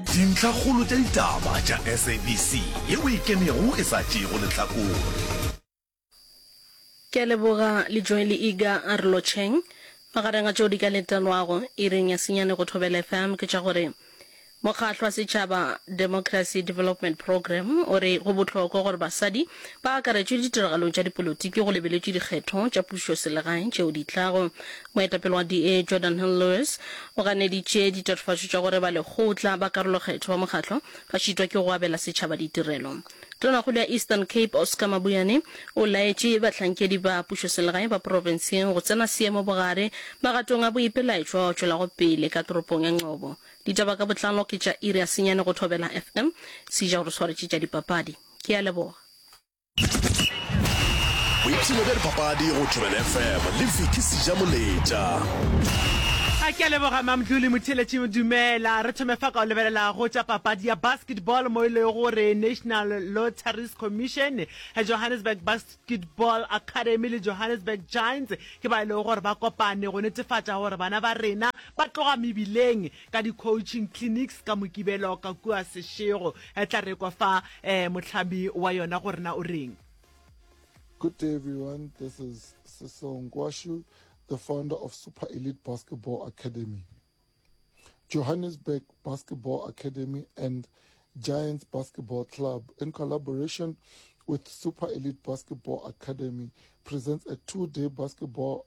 Dintlhakgolo tša ditaba tša SABC ye o e kenego e sa tšeego lehlakore. Ke a leboga Lijoe Liiga a re lotšheng. Magareng a tšeo di ka letelwago iring ya senyane go Thobela FM ke tša gore Mokgahlo wa Setšhaba Democracy Development Program o re go bohlokwa gore basadi ba akaretšwe ditiragalong tša dipolotiki go lebeletšwe dikgetho tša pušoselegae tšeo di tlago. Moetapele wa DA, Jordan Hill-Lewis, o ganeditše ditatofatšo tša gore ba lekgotla ba karolokgetho ba mokgatlo ba šitwa ke go abela setšhaba ditirelo. Tonakgolo ya Eastern Cape, Oscar Mabuyane, o laetše bahlankedi ba pušoselegae ba profenseng go tsena seemo bogare magatong a boipelaetšo ao tšwelago pele ka toropong ya Nqobo. Ditaba ka botlalo ke tša iri ya senyane go Thobela FM. Sija o re swaretše tša dipapadi. Ke a leboga. boipshino bja dipapadi go thobela fm le fiki seja moletša a ke a leboga mamdluli motheletši dumela re thome fa ka o lebelelago tša papadi ya basketball mo e le gore national lotteries commission eh, johannesburg basketball academy le johannesburg giants ke ba e lego gore ba kopane go netefatša gore bana ba rena ba tloga mebileng ka di-coaching clinics ka Mokibelo ka kua Seshego. E tla rekwa fa um mohlami wa yona gore na o reng. Good day, everyone. This is Sesong Kwashu, the founder of Super Elite Basketball Academy, Johannesburg Basketball Academy, and Giants Basketball Club, in collaboration with Super Elite Basketball Academy, presents a two day basketball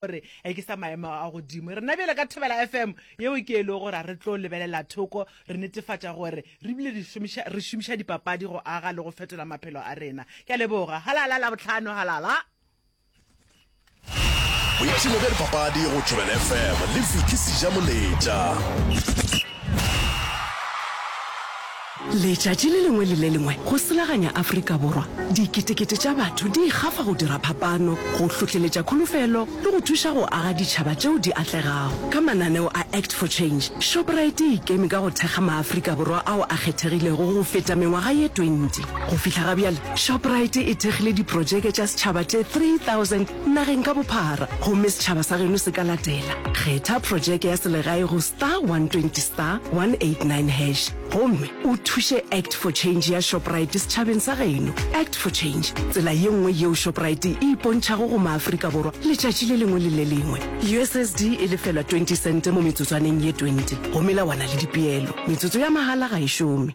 gore e ke sa maemo a godimo rena bjale ka thobela fm yeo ke e lego gore a re tlo lebelela thoko re netefatša gore re bile re šomiša dipapadi go aga le go fetola maphelo a rena ke a leboga halala la botlhano halala boipshino bja dipapadi go thobela fm le fiki seja moletša Letšatši le lengwe le le lengwe go selaganya Afrika Borwa, diketekete tša batho di ikgafa go dira phapano, go hlohleletša kholofelo le go thuša go aga ditšhaba tšeo di atlegago. Ka mananeo a Act for Change, Shoprite e ikeme ka go thekga maAfrika Borwa ao a kgethegilego go feta mengwaga ye 20. Go fihla ga bjale, Shoprite e thekgile diprotšeke tša setšhaba tše 3 nageng ka bophara gomme setšhaba sa geno se ka latela. Kgetha projeke ya selegae go star 120 star 189 hash gomme o thuše Act for Change ya Shoprite setšhabeng sa geno. Act for Change, tsela ye nngwe yeo Shoprite e ipontšhago go maAfrika Borwa letšatši le lengwe le le lengwe. USSD e lefelwa 20 sente mo metsotswaneng ye 20 go melawana le dipeelo. Metsotso ya mahala ga e šome.